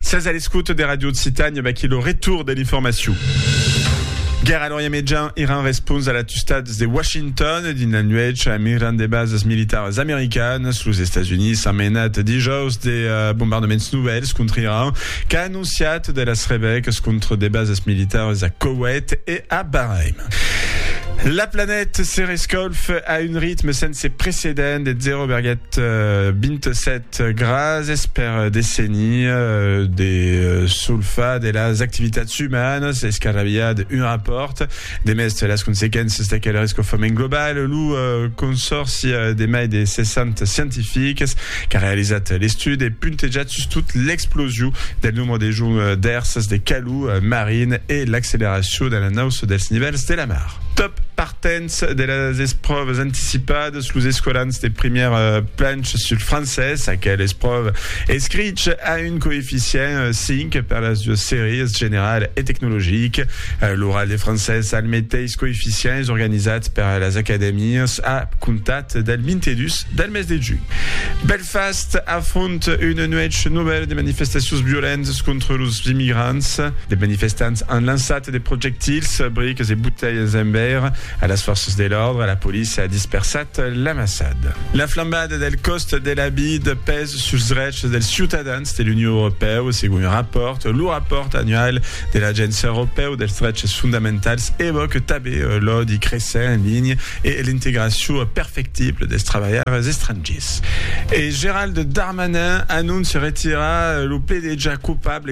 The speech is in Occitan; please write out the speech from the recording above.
Sas a l'escoute de Radio Occitània, vaquí lo retour de l'informacion. Guerra a l'Orient Mejan, Iran respons a l'atustats de Washington dins la nuèch a migrant de basas militaras americanas. Los Estats Units s'an menat dijòus de uh, bombardaments novèls contra Iran, qu'a anonciat de las revècs contra de basas militaras a Koweït e a Bahrain. La planèta se rescolf a un ritme sense precedent de 0,27 Gràcies per decenir de solfar de las activitats umanas es qu'arrabiat un rapòrt de mèste las consequéncias d'aquel risc au foment global. Lo consòrci de mai de 60 scientifics qu'a realizat l'estudi e puntejat sustot l'explosion del nombre de joncs d'èrsas de calor marin e l'acceleracion de la nausa dels nivèls de la mar. Dens de las espròvas anticipadas, los escolans de primièr planch sul francés, aquel espròva escrich a un coeficient 5 per las duas sèries, general e tecnologic. L'oral de francés al meteis coeficient es organizat per las acadèmias a comptat del 22 del mes de junh. Belfast afronta una nuèch novèla de manifestacions violentas contra los immigrants. De manifestants an lançat De projectils, briques e botelhas en veire a las fòrças de l'òrdre, la polícia a dispersat l'amassad. La flambada del còst de la vid pes suls drechs dels ciutadans de l'Union Europèu, segon un rapòrt. Lo rapòrt annual de l'Agéncia Europèu dels Dreches Fondamentals evòque tabé l'òdi cressent en linha e l'integracion perfectible dels trabalhaires estrangiers. E Gerald Darmanin anóncia retirar lo pledejar coupable.